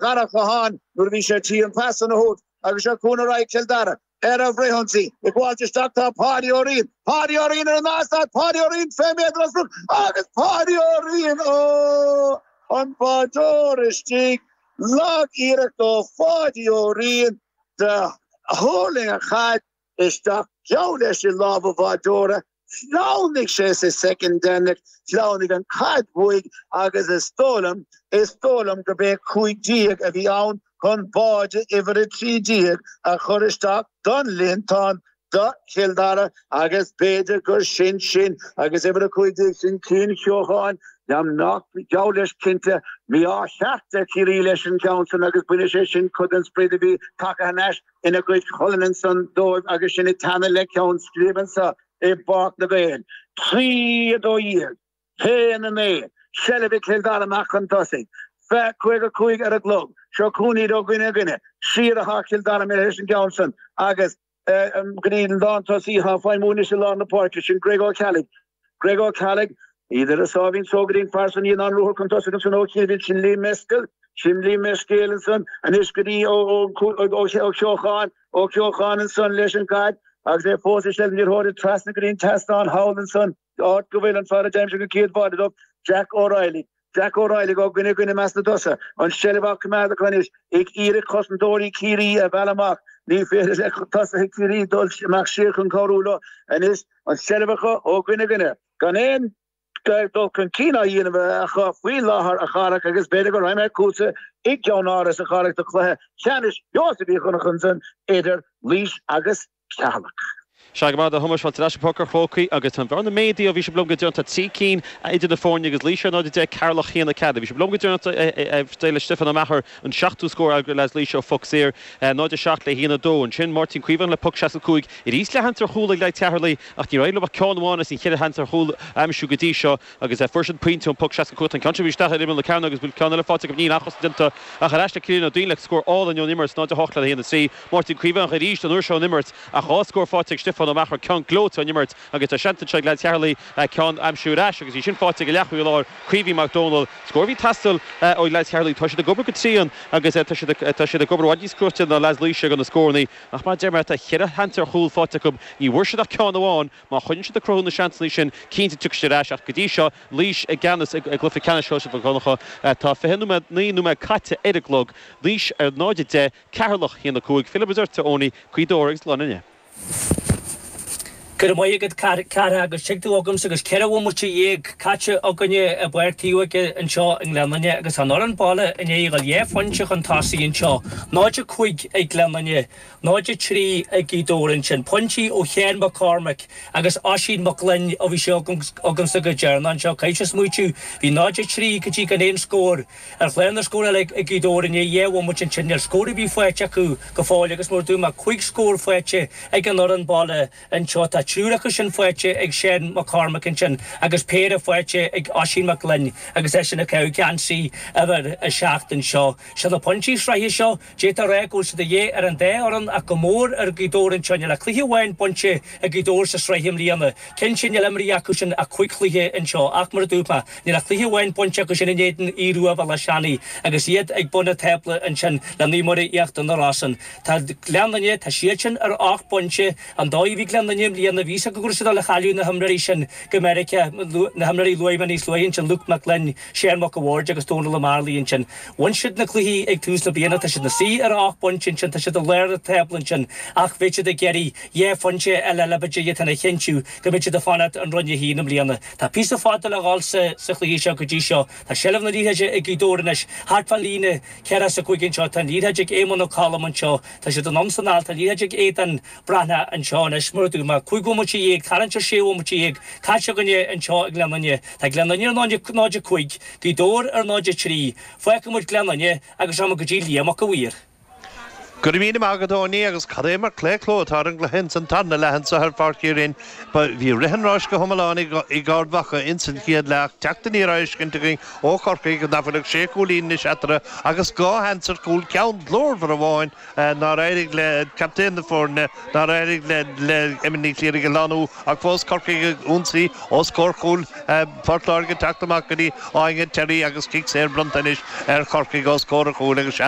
Dharach Catháin nuair a bhí sé ar tí an phas san a thabhairt agus seo chugainn ar aghaidh Chill Dara ar an bhfrithionsaí. Ag gabháilt isteach tá Páidí Ó Riain, Páidí Ó Riain ar an eastát, Páidí Ó Riain 20 méadar as rud agus Páidí Ó Riain ó chun báideoir istigh. Lag-iarracht ó Pháidí Ó Riain do thuirling an chaid. isteach, geall leis i lámha an bháideora, shleamhnaigh sé sa soicind deireanach, shleamhnaigh an chaid uaidh agus is dóigh liom, is dóigh liom gurb é 15 a bhí ann, chun báide uimhir 13 a chur isteach don líontán do Chill Dara agus b'fhéidir gur sin sin agus uimhir 15 sin Cian Ceocháin, geall leis cinnte, mí-ádh cheart ar Chiarraí leis an gceann san agus bainfidh sé sin cuid den sprid a bhí tagtha thar n-ais ina gcuid colann ansan dóibh agus sinn ag teannadh le ceann scríbe anso i bPáirc na nGael. Trí, a dó dhéag, a haon a naoi, seilbh ag Cill Dara amach chun tosaigh. Fe, caoga cúig ar an gclog, seo chugainn iad ó dhuine go duine, siar athá Cill Dara míle théis an gceann san agus go dtí an lántosaí athá ag feidhmiú anois i lár na páirce, sin Greg Ó Ceallaigh, Greg Ó Ceallaigh, iad ar a sáimhín sógairín fairsing í ná an ruathar chun tosaigh ansan ó Cinn Mhill sin Liam Mescal, sin Liam Mescéal ansan anois go dtí Ó Ceocháin, Ó Ceocháin ansan leis an gcaid agus é fós ag seilg iarrthóirí trasna go dtí an tseastán thall ansan, áit go bhfuil an fear a d'aimsigh an chéad bháide dóibh, Jack O'Reilly. Jack Ó Raghailligh ó dhuine go duine i measc na dtosach, an tseilbh á coimeád acu anois ag iarraidh cosantóirí Chiarraí a mhealladh amach, ní féidir le tosaithe Chiarraí dul amach siar chun cabhrú leo anois, an tseilbh acu ó dhuine go duine, gan aon dul chun cinn á dhéanamh acu faoi láthair a Chárthaigh agus b'fhéidir go raghaimid chugatsa i gceannáras a Chárthaigh do chluiche ceannais Sheosaimh Mhic Dhonncha ansan idir Laois agus Ceatharlach. Sea, go maith, a Thomáis, fáilte ar ais go Páirc an Chrócaigh agus tá an bhearna méadaithe ó bhí sibh liom go deireanach, tá trí cinn idir na foirne agus Laois ar 0-10, Ceatharlach haon a ceathair ó bhí sibh liom go deireanach, d'éirigh le Stiofán Ó Meachair an seachtú scór ag leaids Laoise ó phoc saor, 0-7 le haon a dó. Ansin Máirtín Caomhánach le poc 65 arís le seans ar chúl ag leaids Cheatharlaigh ach níor éirigh leo ach ceann amháin as an cheithre sheans ar chúl a aimsiú go dtí seo, Agus fuair siad pointe ón bpoc seasca cúig. Tá an ceann seo arís isteach ar imeall na cearnóige agus bhí ceann eile faighte go Neil, ach cosaint déanta ach ar ais le Ciarán Ó Duinn le scór álainn ón imirt, 0-8 le 1-3. Máirtín Caomhánach arís, an uair seo ón imirt ach dhá scór faighte ag Stiofán Ó Meachair, ceann gleoite ón imirt agus tá seans anseo ag leaids Cheatharlaigh ceann a aimsiú ar ais agus é sin faighte ag an leathchúlaí láir, Caoimhín Mac Dónaill. Scór a bhí ag teastáil ó leaids Cheatharlaigh. Tá siad ag obair go tréan agus tá siad ag obair i bhfad níos cruaite ná leaids Laoise i gcomhair na scóranna ach mar a deir mé tá cheithre sheans ar chúl faighte acu, ní bhfuair siad ach ceann amháin. Má choinníonn siad ag cruthú na seansanna sin, cinnte tiocfaidh siad ar ais ach go dtí seo, Laois i gceannas i gcluiche ceannais Sheosaimh Mhic Dhonncha. Tá fiche nóiméad, naoi nóiméad caite ar an gclog. Laois ar 0-10, Ceatharlach 1-5. Fillimis ort, a Eoiní, Gaoth Dobhair agus Gleann Fhinne. Go raibh maith agat cara agus tig tú agamsa agus ceithre bhomaite dhéag caite againne i bPáirc Taobhóige anseo i nGleann Fhinne agus an fhoireann baile i ndiaidh a dhá phointe chun tosaigh anseo, 0-5 ag Gleann Fhinne, 0-3 ag Gaoth Dobhair ansin, pointí ó Sheán Mac Cormaic agus Oisín Mac Gloinn ó bhí sibh agamsa go deireanach anseo, caithfidh sé smaoitiú. Bhí 0-3 go dtí gan aon scór ar chlár na scór ag Gaoth Dobhair i ndiaidh dheich bhomaite ansin níl scór ar bith faighte acu go fóill agus mar a dúirt mé cúig scór faighte ag an fhoireann baile anseo. Tá triúr acu sin faighte ag Seán Mac Cormaic ansin agus péire faighte ag Oisín Mac Gloinn agus eisean ag caitheamh geansaí uimhir a seacht anseo. Sin na pointí sraithe seo. D'fhéadfá a rá go bhfuil siad de dhíth ar an dá fhoireann ach go mór ar Gaoth Dobhair anseo. Níl ach cluiche amháin bainte ag Gaoth Dobhair sa sraith i mbliana. Cinnte níl imeartha acu sin ach cúig chluiche anseo ach, mar a dúirt mé, níl ach cluiche amháin bainte acu sin in éadan Aoidh Rua Bhéal Átha Seanaidh agus iad ag bun an tábla ansin le Naomh Muire Íochtar na Rosann. Tá Gleann Fhinne, tá siad sin ar ocht bpointe. An dóigh a bhí Gleann Fhinne i mbliana, bhí 'fhios acu go raibh siad dul a chailleadh na himreoirí sin go Meiriceá, na himreoirí a luaigh mé níos luaithe ansin, Luke Mac Gloinn, Seán Mac a' Bhaird agus Dónal Ó Mearlaigh ansin. Bhain siad na cluichí ag tús na bliana, tá siad ina suí ar a ocht bpointe ansin, tá siad i lár an tábla ansin ach bheidh siad ag iarraidh dhá phointe eile le b'fhéidir chun a chinntiú go mbeidh siad ag fanacht in Roinn 1 i mbliana. Tá píosa fada le dhul sa chluiche seo go dtí seo. Tá seilbh na liathróide ag Gaoth Dobhair anois, thart fán líne ceathracha a cúig anseo, tá an liathróid ag Éamonn Ó Colm anseo, tá siad anonn 's anall, tá an liathróid ag Aodán, Breathnach anseo anois, mar a dúirt mé. Cúig bhomaite dhéag, tarraingt ar sé bhomaite dhéag, caite againne anseo i Gleann Fhinne. Tá Gleann Fhinne ar 0.5, Gaoth Dobhair ar 0.3. Fágfaidh muid Gleann Fhinne agus táimid go dtí Liam 'Ac a' Mhaoir. Go raibh míle maith agat, a Eoiní, agus cad é mar claochlú atá ar an gcluiche ins an tarna leath anseo ar Pháirc Uí Rinn. Bhí rith an ráis go hiomlán ag Ard Mhacha ins an chéad leath ach teacht aniar á fheiscint againn ó Chorcaigh, a d'fhág nach bhfuil ach sé chúilín anois eatarthu agus dhá sheans ar chúl ceann glórmhar amháin, nár éirigh le captaen na foirne, nár éirigh le Emma Ní Chléirigh a lánú ach fós Corcaigh ag ionsaí os comhair chúil Phort Láirge ag teacht amach go dtí Áine Terry agus cic saor bronnta anois ar Chorcaigh os comhair an chúil agus seans